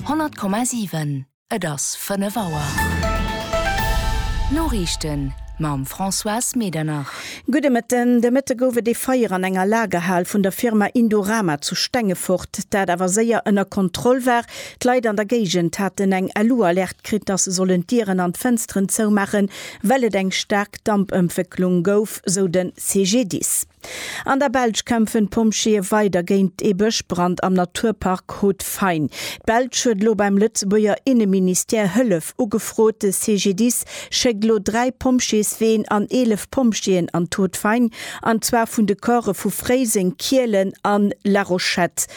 100,7 Et ass 5 Auer. D'Noriichten mam Françoise Medernach. Gudde Mëtten. De Mëtte gouf et ee Feier an enger Lagerhal vun der Firma Indorama zu Stengefort, dat awer séier ënner Kontroll war. D'Leit an der Géigend haten eng LU-Alerte kritt, dass se sollen d'Dieren an d'Fënsteren zoumaachen, well et eng staark Dampëntwécklung gouf, sou den CGDIS. An der Belsch kämpfen d'Pompjeeë weider géint ee Bëschbrand am Naturpark Haut-Fain. D'Belsch huet elo beim Lëtzebuerger Inneministère Hëllef ugefrot. De CGDIS schéckt elo dräi Pompjeesween an 11 Pompjeeën an d'Haut-Fain, an zwar vun de Corpse vu Fréiseng, Kielen a La Rochette.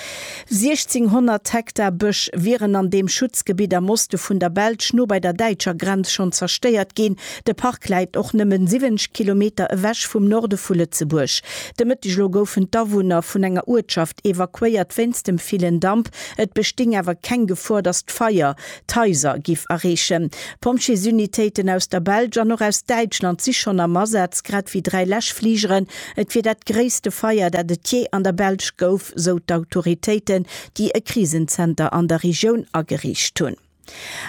1.600 Hektar Bësch wieren an deem Schutzgebitt am Oste vun der Belsch, no bei der däitscher Grenz, schonn zerstéiert ginn. De Park läit och nëmmen 70 Kilometer ewech vum Norde vu Lëtzebuerg. De Mëtteg elo goufen d'Awunner vun enger Uertschaft evakuéiert wéinst dem villen Damp. Et besting awer keng Gefor, datt d'Feier d'Haiser giff erreechen. Pompjeesunitéiten aus der Belsch an och aus Däitschland si schonn am Asaz, grad ewéi dräi Läschfligeren. Et wier dat gréisste Feier, dat et jee an der Belsch gouf, sou d'Autoritéiten, déi e Krisenzenter an der Regioun ageriicht hunn.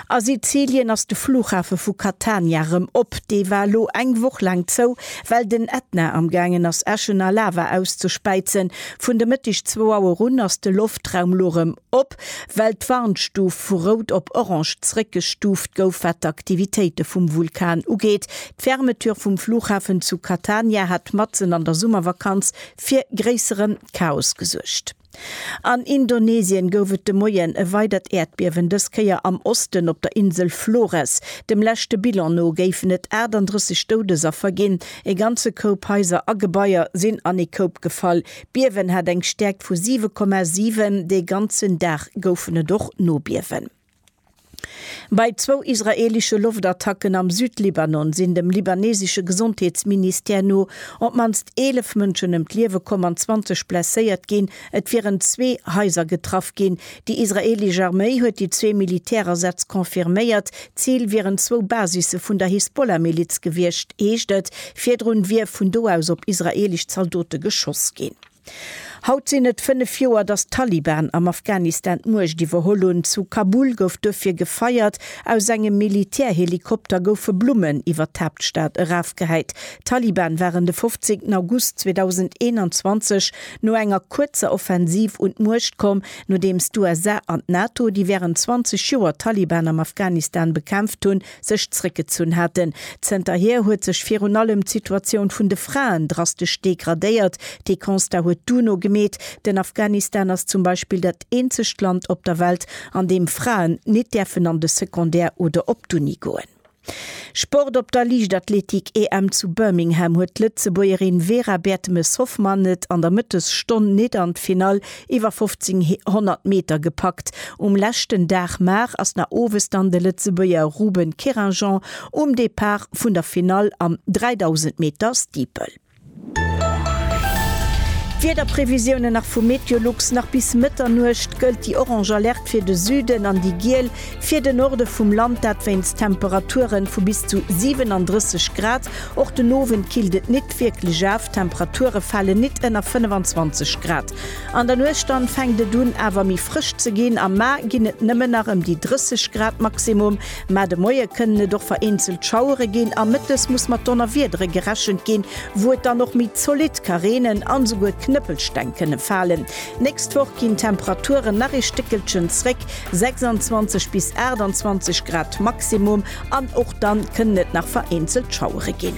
A Sizilien ass de Flughafe vu Catania rëm op. Dee war elo eng Woch laang zou, well den Ätna am gaangen ass, Äschen a Lava auszespäizen. Vun de Mëtteg zwou Auer un ass de Loftraum elo rëm op, well d'Warnstuf vu rout op orange zréckgestuuft gouf, wat d'Aktivitéite vum Vulkan ugeet. D'Fermeture vum Flughafen zu Catania hat matzen an der Summervakanz fir gréissere Chaos gesuergt. An Indonesien gouf et de Moien e weidert Äerdbiewen, dës Kéier am Osten op der Insel Flores. Dem leschte Bilan no géifen et 38 Doudesaffer ginn. E ganze Koup Haiser a Gebaier sinn an ee Koup gefall. D'Biewen hat eng Stäerkt vu 7,7. Dee ganzen Dag goufen et och Nobiewen. Bei zwou israeelesche Loftattacken am Südlibanon sinn dem libanesesche Gesondheetsministère no op d'mannst 11 Mënschen ëm d'Liewe komm an 20 blesséiert ginn. Et wieren zwee Haiser getraff ginn. Déi israeelesch Arméi huet déi zwee Militärasätz confirméiert. D'Zil wieren zwou Basisse vun der Hisbollah-Miliz gewiescht, heescht et. Virdrun wier vun do aus op israeelesch Zaldote geschoss ginn. Haut sinn et fënnef Joer, datt d'Taliban am Afghanistan d'Muecht iwwerholl hunn. Zu Kabul gouf duerfir gefeiert, aus engem Militärhelikopter goufe Blummen iwwer d'Haaptstad erafgehäit. D'Taliban waren de 15 August 2021 no enger kuerzer Offensiv un d'Muecht komm, nodeems d'USA an d'NATO, déi wärend 20 Joer d'Taliban am Afghanistan bekämpft hunn, sech zréckgezunn haten. Zënterhier huet sech virun allem d'Situatioun vun de Fraen drastesch degradéiert. Dee Constat huet d'UNO gemeet. Den Afghanistan ass zum Beispill dat eenzegt Land op der Welt, an deem Fraen nit däerfen an de Secondaire oder op d'Uni goen. Sport Op der Liichtathletik-EM zu Birmingham huet d'Lëtzebuergerin Vera Bertemes-Hoffmann et an der Mëttesstonn nit an d'Finall Iwwer 1500 Meter gepackt um leschten Dag, mar ass nach owes dann de Lëtzebuerger Ruben Keringeon um Depart vun der Finall am 3000 Meter Steeple. D'Wiederprevisiounen nach vu Meteolux, Nach bis Mëtternuecht gëllt déi orange Alerte fir de Süden an déi giel Fir de Norde vum Land dat wéinst Temperaturen vu bis zu 37 Grad. Och den Owend killt et nit wierklech aaf, d'Temperature falen nit ënner 25 Grad. An der Nuecht dann fänkt et un awer méi frësch ze ginn, am Mar ginn et nëmmen nach ëm déi 30 Grad Maximum. Mä de Moie kënnen et och vereenzelt Schauere ginn a mëttes muss mat Donnerwiedere gerechent ginn, wou et dann och méi zolidd ka reenen an esouguer Knëppelsteng kënne falen. D'nächst Woch ginn d'Temperaturen nach ee Stéckelchen zréck. 26 bis 28 Grad Maximum an och dann kënnen et nach vereenzelt Schauere ginn.